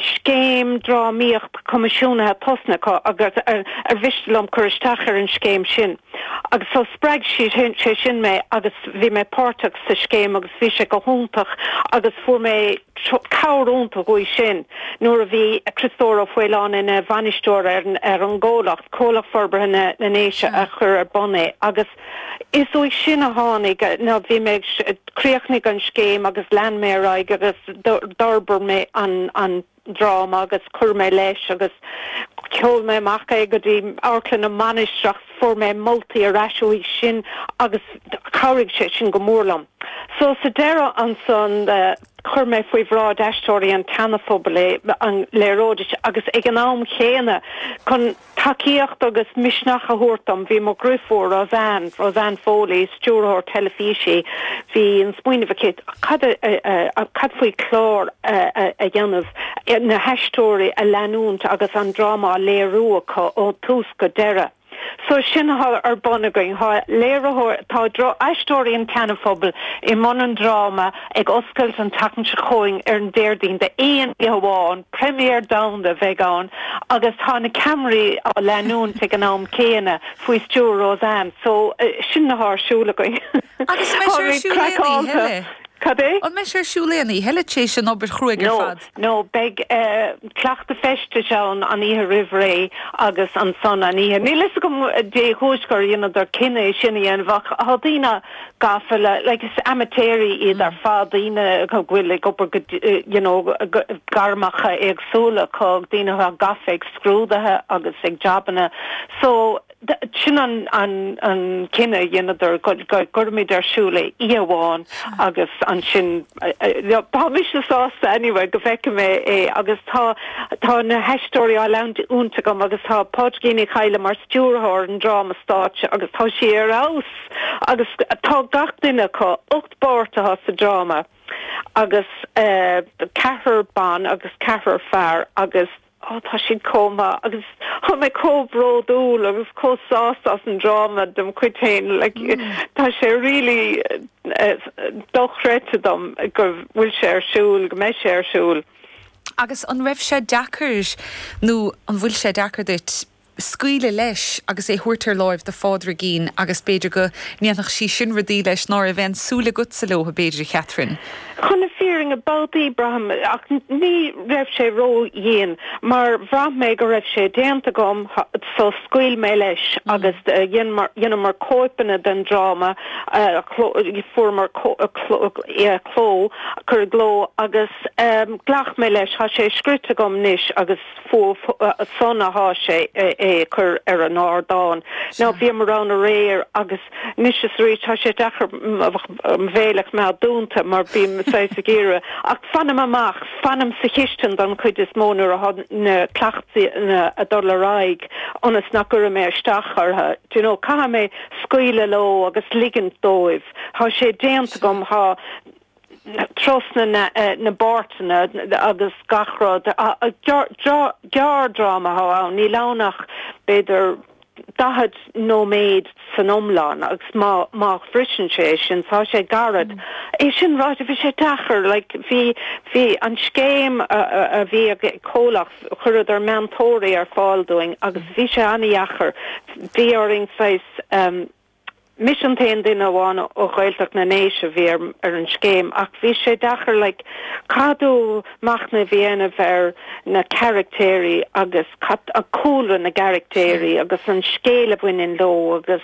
scéim drámaíocht coimisiúnaithe tosnaithe acu agus ar mhiste liom cur isteach ar an scéim sin agus so spreag sé sin mé agus bhí mé páirteach sa scéim agus bhí sé go hiontach agus fuair mé cabhair iontach uaidh sin nuair a bhí Criostóir Ó Faoláin ina bhainisteoir ar an gcomhlacht, Comhlacht Forbartha na nDéise a chuir ar bun é agus. Is uaidh sin a tháinig, no bhí mé ag, chríochnaigh an scéim agus lean mé ar aghaidh agus d'fhorbair mé an dráma agus chuir mé leis agus sheol mé amach é go dtí Amharclann na Mainistreach fuair mé moltaí ar ais uaidh sin agus chabhraigh sé sin go mór liom. So sa deireadh ansan chuir mé faoi bhráid Aisteoirí an tSeanaphobail é, é a léiriú dóibh agus ag an am chéanna chun, Tacaíocht agus misneach a thabhairt dom, bhí mo dhriofúr, Roseanne, Roseanne Foley, stiúrthóir teilifíse, bhí an smaoineamh aici cad a, cad faoi chlár a dhéanamh, na haisteoirí a leanúint agus an dráma á léiriú acu ón tús go deireadh. So sin athá ar bun againn, thá léiritheoir, tá aisteoirí an tSeana-Phobail i mbun an dráma, Ag oscailt an tseachtain seo chugainn ar an Déardaoin d'aon oíche amháin, première domhanda a bheidh ann agus tá na ceamaraí á leanúint ag an am céanna faoi stiúir Roseanne so sin an rud athá ar siúl againn. Agus an mbeidh sé ar siúl aon oíche eile tar éis an obair chruaidh ar fad? No, beidh cleachtadh feistis ann an oíche roimh ré agus ansan an oíche. Níl a fhios agam dén chúis gur dheineadar an cinneadh sin a dhéanamh ach thá daoine gafa le, like, is amaitéaraí iad ar fad, daoine go bhfuil ag obair, you know, gairmeacha éagsúla acu, daoine atá gafa ag scrúdaithe agus ag jabanna, so, Sin an cinneadh a dheineadar, go gcuirfimid é ar siúl oíche amháin agus ansin, beidh mise sásta anyway go bhfeicfidh mé é agus tá, tá na haisteoirí á leanúint agam agus tá Pádraigín Uí Chadhla mar stiúrthóir an dráma stáitse agus tá sí ar fheabhas agus tá gach duine acu, ocht bpáirt atá sa dráma agus ceathrar ban agus ceathrar fear agus. Ó, tá siad chomh maith agus tá mé chomh bródúil agus chomh sásta as an dráma dem chuid féin, like, tá sé really dochreidte dom go bhfuil sé ar siúl, go mbeidh sé ar siúl. Agus an raibh sé deacair nó an bhfuil sé deacair duit scaoileadh leis agus é thabhairt ar láimh do Phádraigín agus b'fhéidir go ndéanfadh sí sin rudaí leis ná raibh aon súil agatsa leobhtha b'fhéidir a Chatherine. Chun na fírinne, babhtaí, braithim, ach ní raibh sé ró-dhian mar bhraith mé go raibh sé déanta agam so scaoil mé leis agus dheineamar cóipeanna den dráma a fuaireamar cló, cur i gcló agus ghlac mé leis, thá sé scríte agam anois agus. fúthu san athá sé é a chur ar an ardán. Now bhíomar ann aréir agus anois is arís thá sé deacair mo bhéal a choimeád dúnta mar bím saghas ag iarraidh, ach fanaim amach, fanaim sa chistin don chuid is mó nuair athá na cleachtaí a' dul ar aghaidh ionas nach gcuirfidh mé isteach orthu, d'you know, caithfidh mé scaoileadh leo agus ligint dóibh, thá sé déanta agam, thá. trasna na bpáirteanna agus gach rud. Gearrdráma atá ann, níl ann ach b'fhéidir daichead nóiméad san iomlán agus má bhriseann sé é sin, tá sé gairid. É sin ráite, bhí sé deacair, like, bhí an scéim a bhí ag comhlacht, chuireadar meantóirí ar fáil dúinn agus bhí sé an-dheacair, bhí orainn saghas, Mise an t-aon duine amháin ó Ghaeltacht na nDéise a bhí ar an scéim ach bhí sé deacair, like, caithfidh tú machnamh a dhéanamh ar na caraictéirí agus cad, cúlra na gcaraictéirí agus an scéal a bhaineann leo agus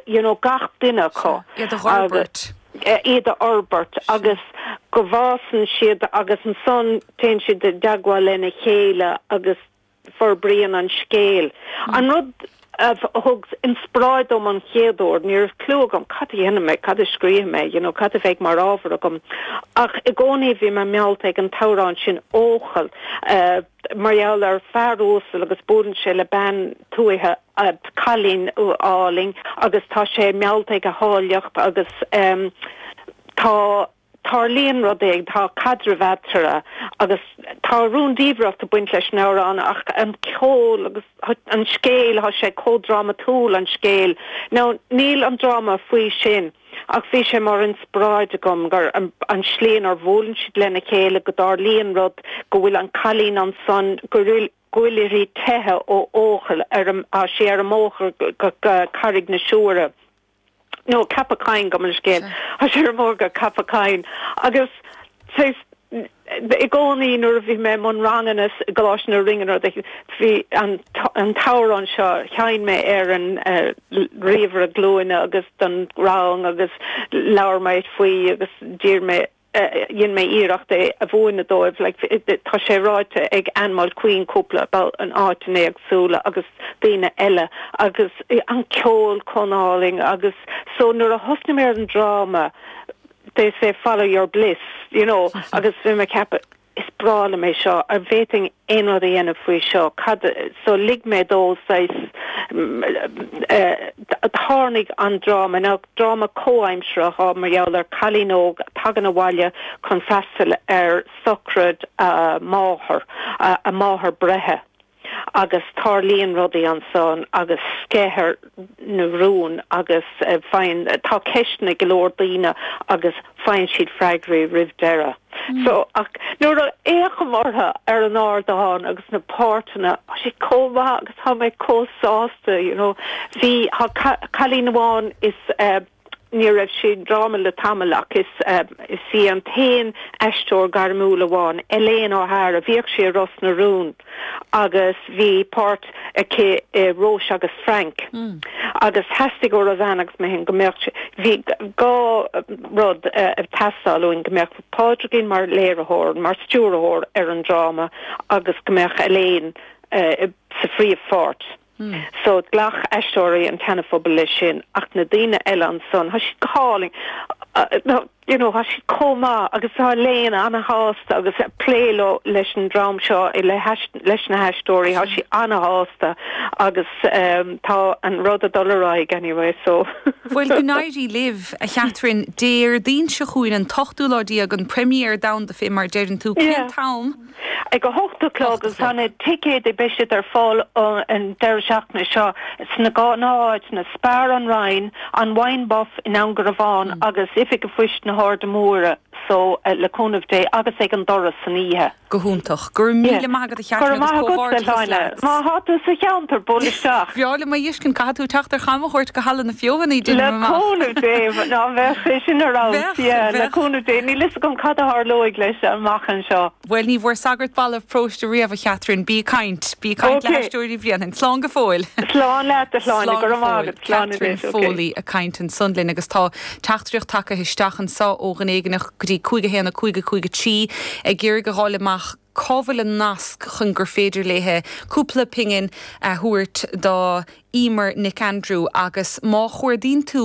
you know gach duine acu agus iad a fhorbairt agus go bhfásann siad agus ansan téann siad i dteagmháil lena chéile agus forbraíonn an scéal. An rud a thug inspioráid dom an chéad uair, ní raibh cliú agam cad a dhéanfaidh mé, cad a scríobhfaidh mé, you know cad a bheidh mar ábhar agam, ach i gcónaí bhí mé meallta ag an t-amhrán sin Eochaill mar gheall ar fear uasal agus buaileann sé le bean tuaithe, cailín álainn agus tá sé meallta ag a háilleacht agus tá. Tarlaíonn rud éigin, tá caidreamh eatarthu agus tá rúndiamhracht ag baint leis an amhrán ach an ceol agus an scéal, tá sé chomh drámatúil an scéal. Now, níl an dráma faoi sin ach bhí sé mar inspioráid agam gur an tslí inar bhuaileann siad lena chéile go dtarlaíonn rud, go bhfuil an cailín ansan, go bhfuil uirthi teitheadh ó Eochaill, tá sí ar an mbóthar go Carraig na Siúire. No, Ceapach Choinn, gabh mo leithscéal. Tá sí ar an mbóthar go Ceapach Choinn. Agus, saghas, i gcónaí nuair a bhí mé i mbun ranganna i gColáiste na Rinne nó do bhí an, an t-amhrán seo, sheinn mé ar an ríomhaire glúine agus don rang agus labhair mé faoi agus d'iarr mé, dhein mé iarracht é a mhúineadh dóibh like tá sé ráite ag Anne Mulqueen cúpla babhta in áiteanna éagsúla agus daoine eile agus an ceol chomh hálainn agus so nuair a thosnaigh mé ar an dráma they say follow your bliss you know agus bhí mé ag ceapadh is breá liom é seo, an bhféadfainn aon rud a dhéanamh faoi seo, cad, so lig mé dó saghas, tháinig an dráma, ina dráma comhaimseartha mar gheall ar cailín óg a tagann abhaile chun freastal ar sochraid a máthar, a máthair breithe. agus tarlaíonn rudaí ansan agus sceiththear na rúin agus faigheann, tá ceisteanna ag go leor daoine agus faigheann siad freagraí roimh deireadh. So, ach nuair a fhéachaim orthu ar an ardán agus na páirteanna, tá siad chomh maith agus tá mé chomh sásta, you know. Bhí, tá cailín amháin is eh, Ní raibh sí ag dráma le tamall ach is í an t-aon aisteoir gairmiúil amháin, Elaine O'Hara, bhíodh sí i Ros na Rún agus bhí páirt aici i Róise agus Frank agus theastaigh ó Roseanne agus mé féin go mbeadh, bhí dhá rud ag teastáil uainn, go mbeadh Pádraigín mar léiritheoir, mar stiúrthóir ar an dráma agus go mbeadh Elaine sa phríomhpháirt. So, ghlac Aisteoirí an tSeanaphobail leis sin ach na daoine eile ansan, tá siad go hálainn, you know, tá siad chomh maith agus tá Elaine ana-shásta agus ag plé leo, leis an dream seo, leis na haisteoirí, tá sí ana-shásta agus tá an rud ag dul ar aghaidh anyway, so. Bhuel, go n-éirí libh, a Chatherine. Déardaoin seo chugainn, an t-ochtú lá déag, an première domhanda fé mar deireann tú. Cén t-am? Ag a hocht a chlog, agus na ticéid, beidh siad ar fáil an deireadh seachtaine seo sna gnáth-áiteanna, Spar, An Rinn, An Wine Buff i nDún Garbhán agus Oifig Phoist na hAirde Móire so le cúnamh Dé agus ag an doras san oíche. Go hiontach. Go raibh míle maith agat a Chatherine agus comhghairdeachas leat. Go raibh maith agat, a Shláine. Má thá tú sa cheantar, buail isteach. Bhreá liom é a fheiscint, caithfidh tú teacht ar chamchuairt go Halla na Feothanaí, déanaim amach. Le cúnamh Dé, mhn, bheadh sé sin ar fheabhas, Bheadh, yeah, bheadh, le cúnamh Dé. Níl fhios agam cad a tharlóidh leis amach an. seo. Bhuel, ní bhfuair sagart balbh próiste riamh, a Chatherine. Bí ag caint. Bí ag caint le hAisteoirí Bhréanainn. Slán go fóill. Slán leat, a Shláine. Go raibh maith agat. Slán anois. OK. Catherine Foley ag caint ansan linn agus tá teachtaireacht tagtha isteach anso ó dhuine éigin go dtí 51553 ag iarraidh a dh'fháil amach cá bhfuil an nasc chun gur féidir léithe cúpla pingin a thabhairt do Emer Nic Aindriú agus má chuardaíonn tú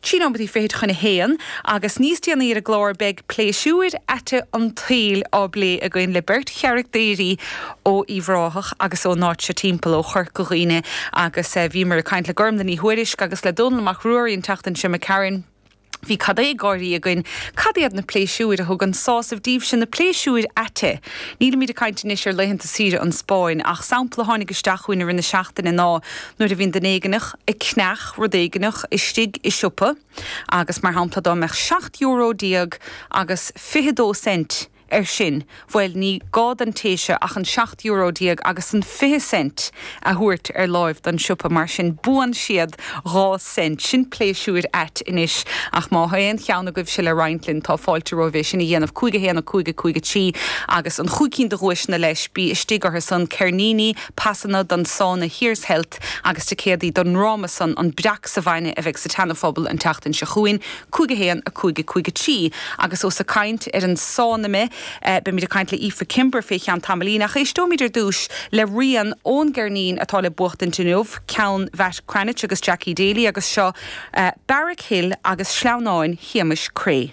trí nóiméad fichid chun a haon, agus níos déanaí ar an gclár beidh pléisiúir aite an tsaoil á bplé againn le beirt charachtairí ó Uíbh Ráthach agus ón áit seo timpeall, ó Chorca Dhuibhne, agus bhíomar ag caint le Gormlaith Ní Thuairisg agus le Dónall Mac Ruairí an tseachtain seo a chaitheamar. Bhí an-chuid gáirí againn. Cad iad na pléisiúir a thugann sásamh daoibhse, na pléisiúir aite? Nílimid ag caint anois ar laethanta saoire sa Spáinn, ach sampla a tháinig isteach chugainn i rith na seachtaine ná, Nuair a bhíonn duine éigneach ag ceannach rud éigneach, istigh i siopa, agus mar shampla dá mbeadh seacht euro déag agus fiche dó cent air sin, bhuel, ní gá don té sin ach an seacht euro déag agus an fiche cent a thabhairt ar láimh don siopa, mar sin buann siad dhá cent. Sin pléisiúir ait anois, ach má tha aon cheann agaibhse le roinnt linn, tá fáilte romhaibh é sin a dhéanamh. Cúig a haon, a cúig, a cúig a trí, agus na cúig cinn de dhuaiseanna leis, bí istigh orthusan, ceirníní, pasanna don sauna Here's Health agus ticéadaí don ndráma san An Breac sa Bhainne a bheidh sa tSeana Phobal an tseachtain seo chugainn, 5 1, 5 5 3 agus ós ag caint ar an sauna mé, beimid ag caint le Aoife Kimber fé cheann tamaillín, ach éisteoimid ar dtús le rian ón gceirnín atá le buachtaint inniu, ceann Mhatt Cranitch agus Jackie Daly agus seo Barrack Hill agus Sleamhnán Shéamais Creagh.